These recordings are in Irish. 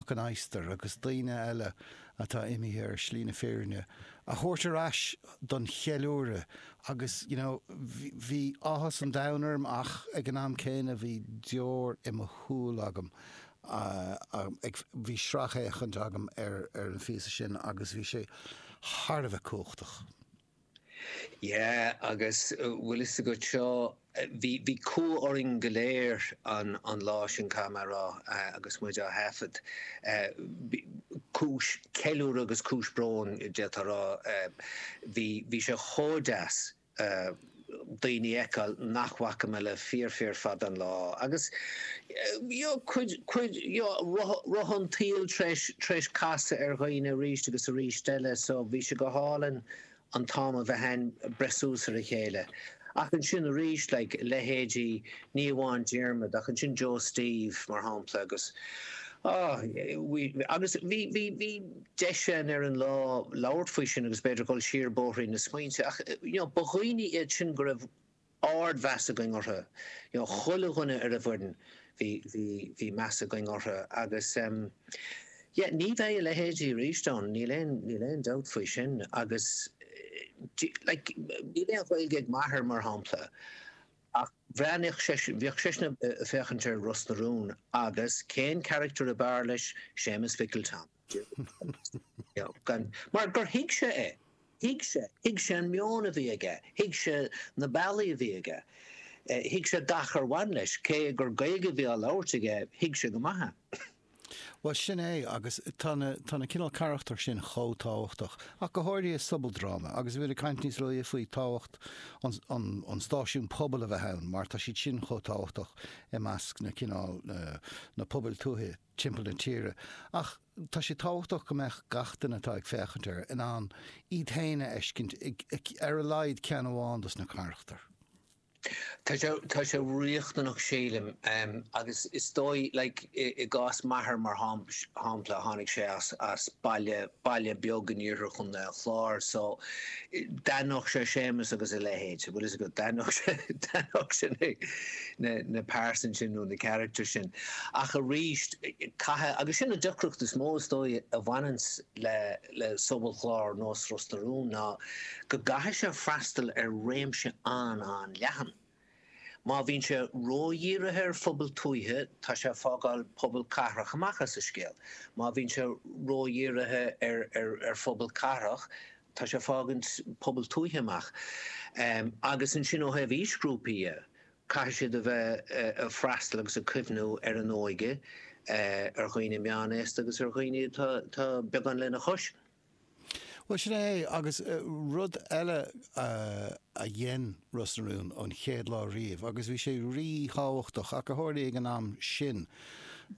Mac an Adhastair agus daoine eile atá imithe ar shlí na fírinne a thabhairt ar ais don cheiliúradh agus you know bhí áthas an domhain orm ach ag an am céanna bhí deoir i mo shúil agam, a bhí sracfhéachaint agam ar an phíosa sin agus bhí sé thar a bheith cumhachtach. Yeah, agus bhfuil fhios agat seo, bhí, bhí cumha orainn go léir an, an lá sin caithfidh mé a rá agus muid á thaifead. Cúis ceiliúradh agus cúis bróin d'fhéadfá a rá. Bhí, bhí sé chomh deas daoine a fheiceáil nach bhfaca mé le fíor fíor fada an lá agus you know cuid, cuid you know roth, roth an tsaoil tar éis, tar éis casadh ar dhaoine arís agus arís eile so bhí sé go hálainn. an t-am a bheith ann breith suas ar a chéile. Ach ansin arís, like, leithéidí ní amháin Diarmaid ach ansin Joe Steve, mar shampla, agus, ah, bhí, agus bhí, bhí, bhí deis ann ar an lá labhairt faoi sin agus b'fhéidir dhul siar bóithrín na smaointe ach, you know, ba dhaoine iad sin go raibh ard-mheas againn orthu. You know, chuile dhuine ar an bhfoireann, bhí, bhí, bhí meas againn orthu agus em. Yeah, ní bheidh a leithéidí arís ann, níl aon, níl aon dabht faoi sin agus do you, like, níl aon Ghaeilge ag m'athair, mar shampla, ach bhreathnaíodh seisean, bhíodh seisean a' féachaint ar Ros na Rún agus cén character ab fhearr leis, Séamus Mhicil Tom. Mar gur thuig sé é. Thuig sé. Thuig sé an meon a bhí aige. Thuig sé na bealaí a bhí aige. Thuig sé gach ar bhain leis. Cé gur Gaeilge a bhí á labhairt aige, thuig sé go maith é. Bhuel, sin é, agus tá na cineál carachtar sin chomh tábhachtach, ach go háirithe i sobaldráma, agus a bhí ag caint níos luaithe faoi tábhacht an stáisiún pobail a bheith ann, mar tá siad sin chomh tábhachtach i measc na cineál, na pobail tuaithe. timpeall na tíre, ach tá sé tábhachtach go mbeadh gach duine atá ag féachaint air in ann iad féin a fheiscint i ar a laghad ceann amháin dos na carachtair. Tá sé riachtanach sílim agus is dóigh like i gcás m'athair mar shampla tháinig sé as baile baile beag in iarthar Chontae an Chláir so d'aithneodh sé Séamus agus a leithéid, bhfuil 'fhios agat, d'aithneodh sé, d'aithneodh sé na, na pearsain sin nó na characters sin ach arís caithfidh, agus sin an deacracht is mó is dóigh a bhaineanns le, le sobalchlár nós Ros na Rún ná go gcaithfidh sé freastal ar réimse an-an-leathan. Má bhíonn sé ródhírithe ar phobail tuaithe, tá sé ag fágáil pobail cathrach amach as an scéal. Má bhíonn sé ródhírithe ar phobail cathrach, tá sé ag fágaint pobail tuaithe amach. Agus ansin ó thaobh aoisghrúpaí dhe, caithfidh siad a bheith ag freastal agus ag cuimhniú ar an óige, ar dhaoine meánaosta agus ar dhaoine atá beagán lena chois. Bhuel, sin é, agus rud eile a dhein Ros na Rún ón chéad lá riamh, agus bhí sé rí-thábhachtach, ach a tharla ag an am sin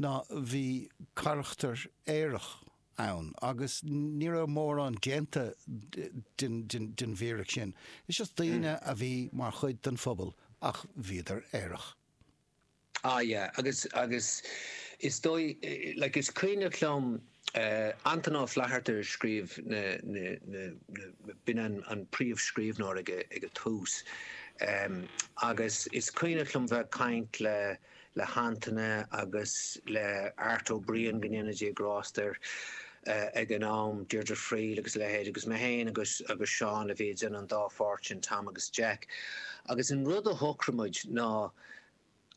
ná bhí carachtar aerach ann, agus ní raibh mórán déanta den bhfíric sin. Just daoine a bhí mar chuid den phobal, ach bhíodar aerach. Ah yeah agus agus is dóigh like is cuimhneach liom Antaine Ó Flatharta a scríobh na na na na b'in an an príomhscríbhneoir ag ag an tús ehm agus is cuimhneach liom bheith ag caint le le hAntaine agus le Art Ó Briain go ndéana Dia grásta air eh ag an am Deirdre Friel agus a leithéid agus mé féin agus agus Seán a bhí ag déanamh an dá pháirt sin, Tom agus Jack agus an rud a shocraigh muid ná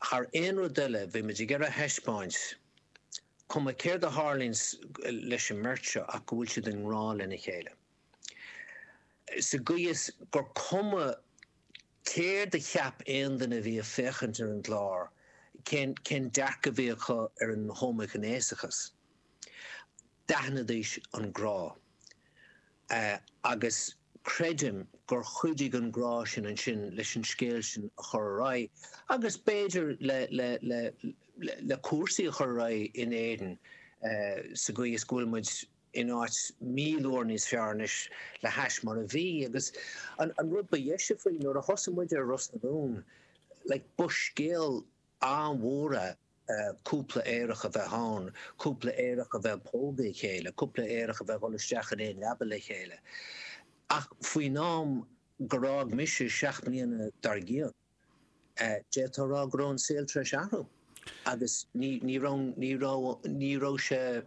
Thar aon rud eile, bhí muid ag iarraidh a thaispeáint, cuma céard a tharlaíonn leis an mbeirt seo, ach go bhfuil siad i ngrá lena chéile. Sa gcaoi is gur cuma céard a cheap aon duine a bhí ag féachaint ar an gclár, cén dearcadh a bhí acu ar an homaighnéasachas, D'aithnidís an grá. Agus creidim gur chuidigh an grá sin ansin leis an scéal sin a chur ar aghaidh agus b'fhéidir le cúrsaí a chur ar aghaidh in Éirinn sa gcaoi is go bhfuil muid in áit míle uair níos fearr anois le hais mar a bhí. Agus an rud ba dheise faoi, nuair a thosaigh muid ar Ros na Rún, like, ba scéal an-mhór é. cúpla aerach a bheith ann, cúpla aerach a bheith ag pógadh a chéile, cúpla aerach a bheith ag dhul isteach in aon leaba le chéile. Ach faoin am gur fhág mise seacht mbliana dár gcionn, d'fhéadfá a rá go raibh an saol tar éis athrú agus ní raibh, ní raibh sé.